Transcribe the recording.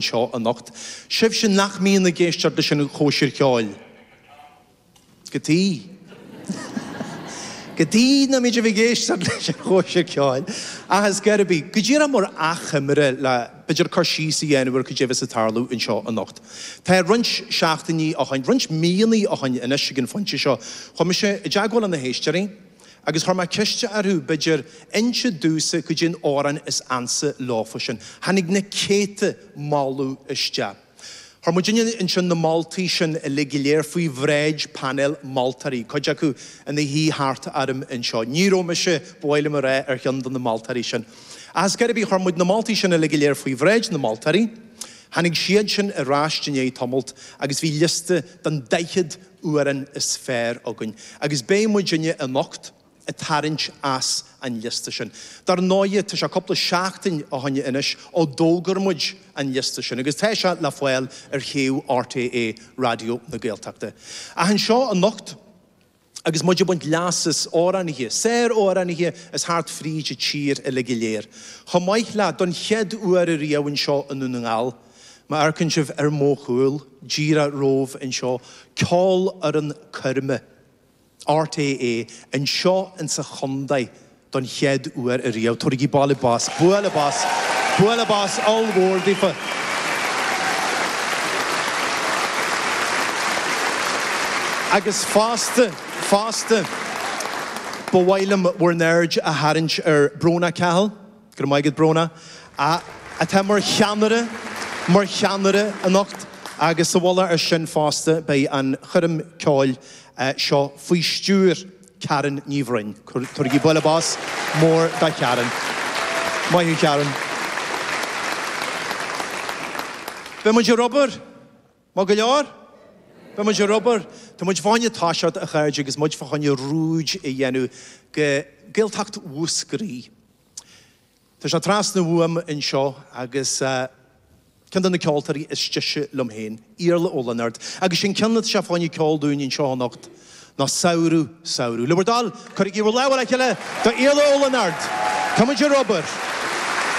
seo anocht. Sibhse nach mbíonn ag éisteacht leis an chóisir cheoil goidé goidé nach mbíonn sibh ag éisteacht leis an chóisir cheoil ach is dóigh go díreach mar achoimre le b'fhéidir cur síos a dhéanamh ar goidé a bheas ag tarlú anseo anocht. Tá roinnt seachtainí ó shin, roinnt míonna ó shin anois ag an phointe seo, chuaigh mise i dteagmháil leis na héisteoirí, agus chuir mé ceist orthu, b'fhéidir, inse domhsa goidé an amhrán is ansa leofa sin. Tháinig na céadta moltaí isteach. Chuir muid ansin na moltaí sin uilig go léir faoi bhráid painéal moltóirí, cuid acu ina shuí thart orm anseo. Ní raibh mise, ba mhaith liom a rá, ar cheann de na moltóirí sin. Ach is dóigh, chuir muid na moltaí sin uilig go léir faoi bhráid na moltóirí, tháinig siadsin ar ais i ndiaidh tamalt agus bhí liosta den 40 amhrán is fearr againn agus beidh muidinne anocht ag tarraingt as an liosta sin. Dar ndóighe, tá sé cupla seachtain ó shin anois ó d'fhógair muid an liosta sin agus tá sé le fáil ar shuíomh RTÉ Raidió na Gaeltachta. Ach anseo anocht, agus muid ag baint leas as amhránaithe, sár-amhránaithe is thart fríd an tír uilig go léir, chomh maith le, don chéad uair riamh anseo i nDún na nGall, Má amharcann sibh ar mo chúl díreach romhaibh anseo, ceolfhoireann coirme RTÉ anseo insa chondae don chéad uair ariamh. Tabhairigí bualadh bos, bualadh bos, bualadh bos ollmhór daofa. Agus fosta, fosta, ba mhaith liom bhur n-aird a tharraingt ar Brónagh Cahill. Go raibh maith agat Bróna, atá mar cheannaire anocht agus sa mhullach ar sin fosta beidh an choirm ceoil seo faoi stiúir Karen Ní Bhroin. Tabhairigí bualadh bos mór do Karen. Maith thú Karen. Beidh muid ar obair! Maith go leor. Beidh muid ar obair. Tá muid fá choinne toiseacht, a chairde, agus muid fá choinne ruaig a dhéanamh go Gaeltacht Mhúscraí. Tá sé trasna uaim anseo agus ceann de na ceoltóirí is deise liom féin, Iarla Ó Lionáird, agus is é an ceann atá sé fá choinne a cheol dúinn anseo anocht ná Samhradh, Samhradh. Le bhur dtoil, cuirigí bhur lámha le chéile do Iarla Ó Lionáird. Tá muid ar obair.